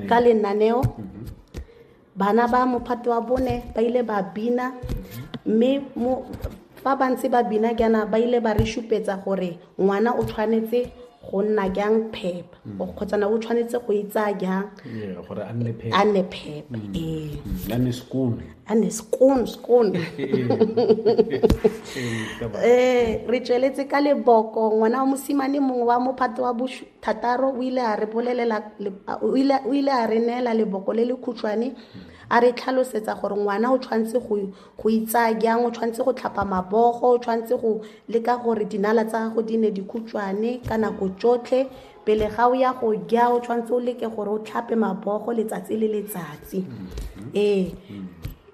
ka lenaneo mhm. bana ba mophato wa bone ba ile ba bina mme fa ba ntse ba bina jaana ba ile ba re supetsa gore ngwana o tshwanetse go nna jang phepa mm. kgotsana o tshwanetse go itsaya jang gore a nne phepa mm. ee mm. a nne sekone a nne sekone sekone ee re tsweletse ka leboko ngwana wa mosimane mongwe wa mophato wa thataro o ile a re bolelela o ile o ile a re neela leboko le le khutshwane a re tlhalosetsa gore ngwana o tshwanetse go go itsaya jang o tshwanetse go tlhapa mabogo o tshwanetse go leka gore dinala tsa gago di ne di khutshwane ka nako tsotlhe pele ga o ya go ja o tshwanetse o leke gore o tlhape mabogo letsatsi le letsatsi ee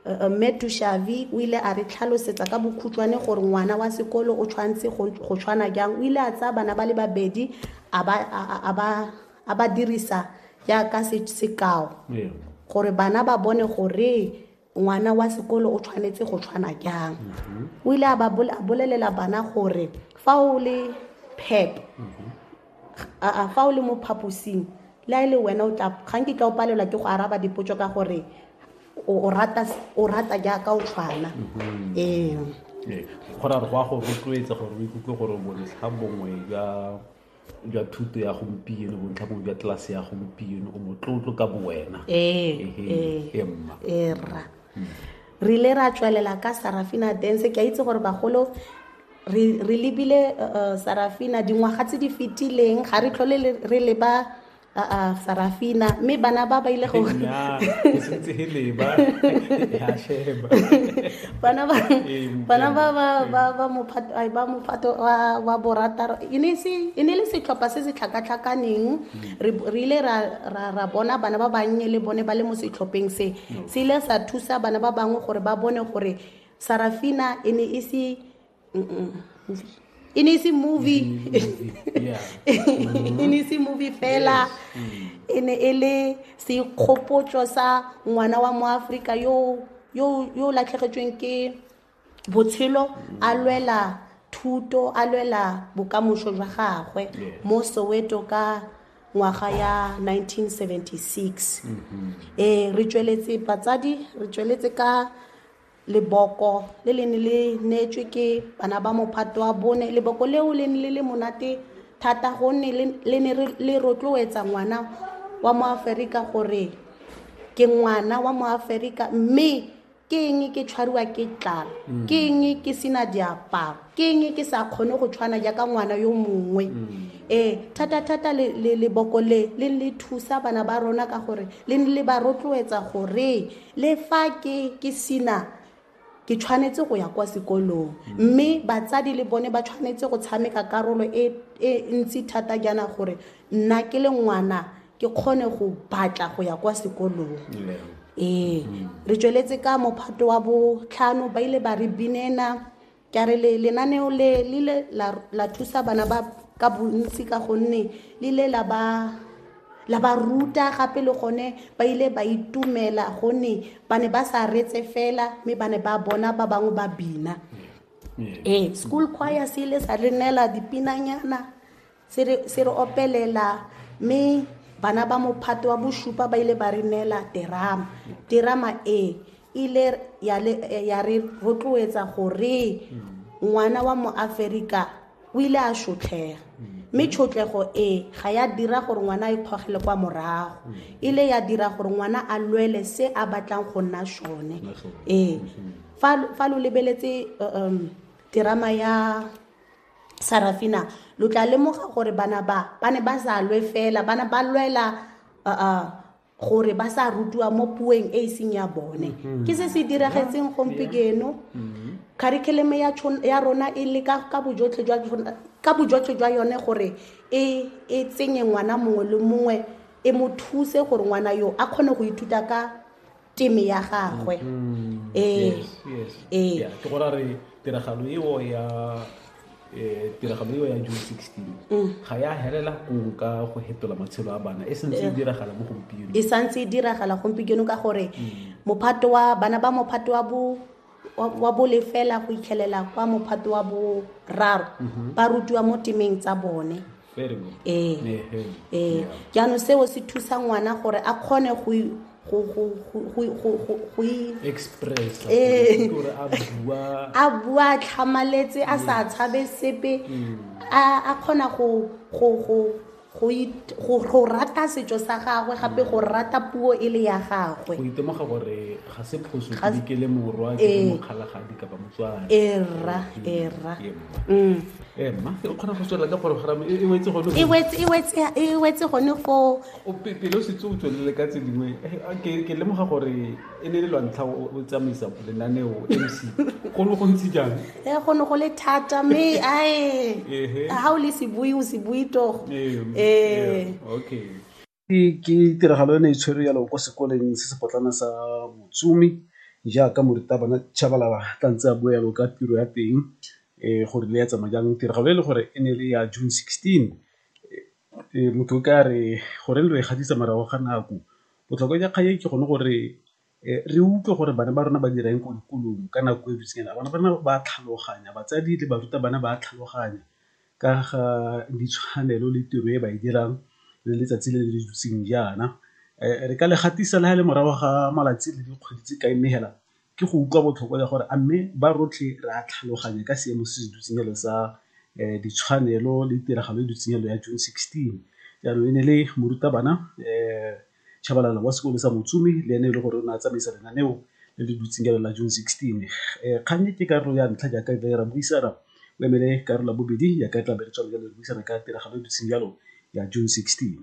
Mme Tushavi o ile a re tlhalosetsa ka bokhutshwane gore ngwana wa sekolo o tshwanetse go go tshwana jang. O ile a tsaya bana ba le babedi a ba a- a- a ba a ba dirisa jaaka se- sekao Ee. gore bana ba bone gore ngwana wa sekolo o tshwanetse go tshwana jang o ile a ba bol- a bolelela bana gore fa o le pep aa fa o le mo phaposing le a e le wena o tla ga nke tla o palelwa ke go araba dipotso ka gore o o rata o rata jaaka o tshwana ee Ee, go ra re go a go rotloetsa gore o ikutlwe gore bontlha bongwe jwa jwa thuto ya gompieno bontlha bongwe jwa tlelase ya gompieno o motlotlo ka bowena ee Ehe, ee ee, mma ee rra re ile ra tswelela ka sarafina dance ke a itse gore bagolo re re lebile uh, uh, sarafina dingwaga tse di fetileng ga re tlhole le- re leba uh, uh, sarafina mme bana ba ba ile go Nnyaa, o setse e leba ya sheba bana ba Ee, bana ba ba ba ba mophato ai, ba mophato wa wa borataro e ne e se e ne e le setlhopha se se tlhakatlhakaneng re re ile ra ra ra bona bana ba bannye le bone ba le mo setlhopheng se se ile sa thusa bana ba bangwe gore ba bone gore sarafina e ne e se e ne e se movie e ne e se movie fela e ne e le sekgopotso sa ngwana wa moaforika yo o latlhegetsweng ke botshelo a lwela thuto a lwela bokamoso jwa gagwe mo soweto ka ngwaga ya 1976 ee re tsweletse batsadi re tsweletse ka leboko le le ne le neetswe ke bana ba mophato wa bone leboko leo le ne le le monate thata gonne le- le ne re- le rotloetsa ngwana wa mo aferika gore ke ngwana wa mo aferika mme ke eng ke tshwariwa ke tlala mm. ke eng ke sena diaparo ke eng ke sa kgone go tshwana jaaka ngwana yo mongwe mm. ee thata-thata leboko le le le thusa bana ba rona ka gore le le ba rotloetsa gore le fa ke ke sena ke tshwanetse go ya kwa sekolong mme batsadi le bone ba tshwanetse go tshameka karolo e, e ntsi thata jaana gore nna ke le ngwana ke kgone go batla go ya kwa sekolong ee re tsweletse ka mophato wa botlhano ba ile ba re binena ke a re le- lenaneo le le ile la- la thusa bana ba ka bontsi ka gonne le ile la ba la ba ruta gape le gone ba ile ba itumela gonne ba ne ba sa retse fela mme ba ne ba bona ba bangwe ba bina ee school choir se ile sa re neela dipinanyana se re se re opelela mme bana ba mophato wa bosupa ba ile ba re neela terama terama e ile ya le- eh, ya re rotloetsa gore ngwana wa moaferika o ile a shotlhega mme tshotlego e ga ya dira gore ngwana a ikgogele kwa morago ile ya dira gore ngwana a lwele se a batlang go nna sone ee fa fa lo lebeletse uh, um, terama ya sarafina lo tla lemoga gore bana ba ba ne ba sa lwe fela bana ba lwela gore ba sa rutiwa mo puong e e seng ya bone mm-hmm. ke se se diragetseng gompieno mm-hmm. curriculum ya rona e le ka bojotlhe jwa yone gore e, e tsenye ngwana mongwe le mongwe e mo thuse gore ngwana yo a kgone go ithuta ka teme ya gagwe mm-hmm. ee ee ke go ra re tiragalo eo ya eh, tiragalo eo ya june 16 mm. ga ya helela kong ka go hetola matshelo a bana e santse e diragala mo gompieno e santse e diragala gompieno ka gore mm. mophato wa bana ba mophato wa bo wa bole fela go itlhelela kwa mophato wa boraro mhm. ba rutiwa mo temeng tsa bone ee ee jaanong seo se thusa ngwana gore a kgone go ee. a bua tlhamaletse a sa mm. tshabe sepe mm. a kgona go go rata setso sa gagwe gape go rata puo e le ya gagwe go itemoga gore ga se phoso ke le morwa ke eh. mokgalagadi kapa motswana erra erra mm. eh, mma o kgona go tswelela ka porogoramo e, e wetse gone e wetse gone foo pele o setse o tswelele ka tse dingwe eh, ke lemoga gore e ne le lwantlha o tsamaisa lenaneo mc go ne go ntse jang e go ne go le thata mme ae ga o le sebui o sebui togo ee okay ke tiragalo e ne e tshwere yalo ko sekoleng se sepotlana sa motsumi jaaka morutabana chabalala tla ntse a bua yalo ka tiro ya teng um gore le ya tsamaya jang tiragalo e le gore e ne le ya june sixteen motho o ka re goreng lo e gatisa morago ga nako Botlhokwa jwa kgang e ke gone gore re utlwe gore bana ba rona ba dira eng ko dikolong ka nako e bitseng yana. Bana ba rona ba tlhaloganya, batsadi le barutabana ba tlhaloganya ka ga ditshwanelo le tiro e ba e dirang le letsatsi le le dutseng jaana. Re ka le gatisa le ha e le morago ga malatsi le dikgwedi tse kae mme hela Ke go utlwa botlhoko ya gore a mme ba rotlhe re a tlhaloganya ka seemo se se dutseng jalo sa ditshwanelo le tiragalo e dutseng jalo ya June 16. Jaanong e ne e le morutabana Tshabalala wa sekolo sa Motsumi le ene e le gore o ne a tsamaisa lenaneo le le dutseng jalo la June 16. Kgang e ke karolo ya ntlha jaaka re ra buisana o emele karolo ya bobedi jaaka re tla be re tswa jalo re buisana ka tiragalo e dutseng jalo ya June 16.